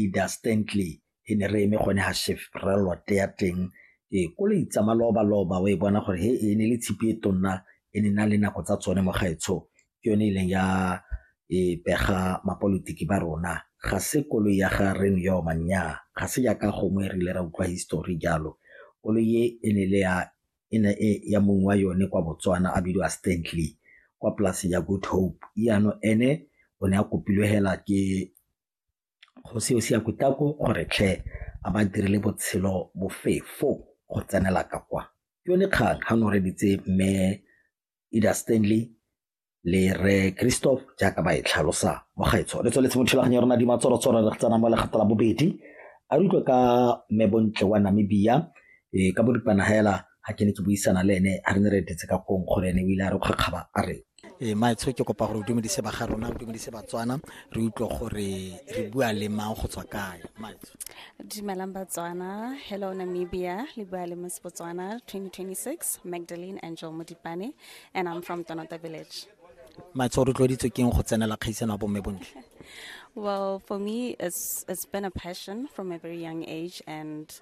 Ida Stantley e ne re eme gone ga Chevrolet ya teng ee ko le itsama loba loba o e bona gore he e ne le tshipi e tonna e ne na le nako tsa tsone mo gaetsho ke yone e leng ya e pega mapolitiki ba rona ga se koloi ya ga re ne yoma nnyaa ga se jaaka gongwe re ile ra utlwa histori jalo koloi e e ne le ya e ne e ya mongwe wa yone kwa Botswana a bidiwa Stanley kwa polase ya Good Hope jaanong ene o ne a kopilwe hela ke Kgosi Osiakutako o re tlhe a ba dirile botshelo bofefo go tsenela ka kwa. Ke yone kgang ga noreditse mme Ida Stanley le re Christoph jaaka ba e tlhalosa mo gaetsho. Re tsweletse mo thulaganyo ya rona dimatsorotsoro re tsena mo legato la bobedi a re utlwe ka mme Bontle wa Namibia e ka boripana hela ga ke ne ke buisana le ene a re ne re etetse ka kong gore ene o ile a re kgakgaba a re e eh, maetsho ke kopa gore o dumedise ba ga rona o dumedise batswana re utlwe gore re bua le mang go tswa kae maetsho dumelang batswana hello namibia le bua le mos botswana 2026 magdalene angel modipane and i'm from tonota village maetsho o rotloeditswe keng go tsenela kgaisano ya bomme bontle well for me it's, it's been a passion from a very young age and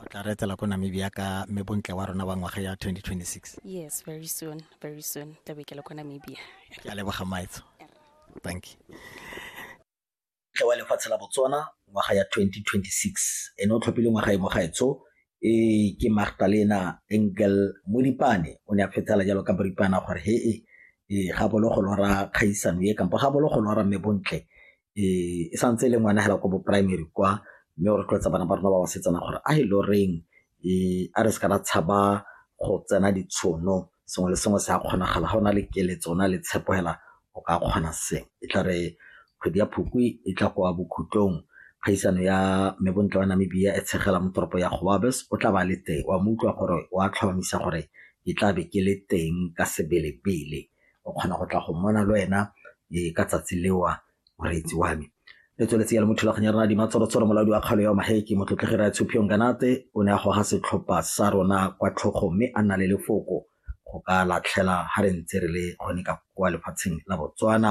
o tla re etela ko namibia ka mme bontle wa rona wa ngwaga ya 2026 yes very soon very soon tla be ke le ko namibia ke a leboga maetso thank you tle wa lefatshe la botswana ngwaga ya 2026 ene o tlhophile ngwaga e mogaetso e ke magdalena engel modipane o ne a fetela jalo ka boripana gore he e ga bolo go lora kgaisano e kampo ga bolo go lora mme bontle e santse e le ngwana fela ko bo primary kwa mme o rotloetsa bana ba rona ba basetsana gore a e le goreng a re se ka ra tshaba go tsena ditshono sengwe le sengwe se a kgonagala ga o na le keletso o na le tshepo fela o ka kgona se e tla re kgwedi ya phukwi e tla kwa bokhutlong kgaisano ya mme bontle wa namibia e tshegela mo toropo ya goabes o tla ba le teng wa mo utlwa gore wa tlhomamisa gore ke tla be ke le teng ka sebelebele o kgona go tla go mmona le wena ka tsatsi leo moreetsi wa me le tsweletse ya le mo thulaganyo ya rona dimatsorotshoro molaodi wa kgalo ya maheke motlotlegi ra tshophiyong kanate o ne a goga setlhopha sa rona kwa tlhogo mme a nna le lefoko go ka latlhela ga re ntse re le gone ka kwa lefatsheng la botswana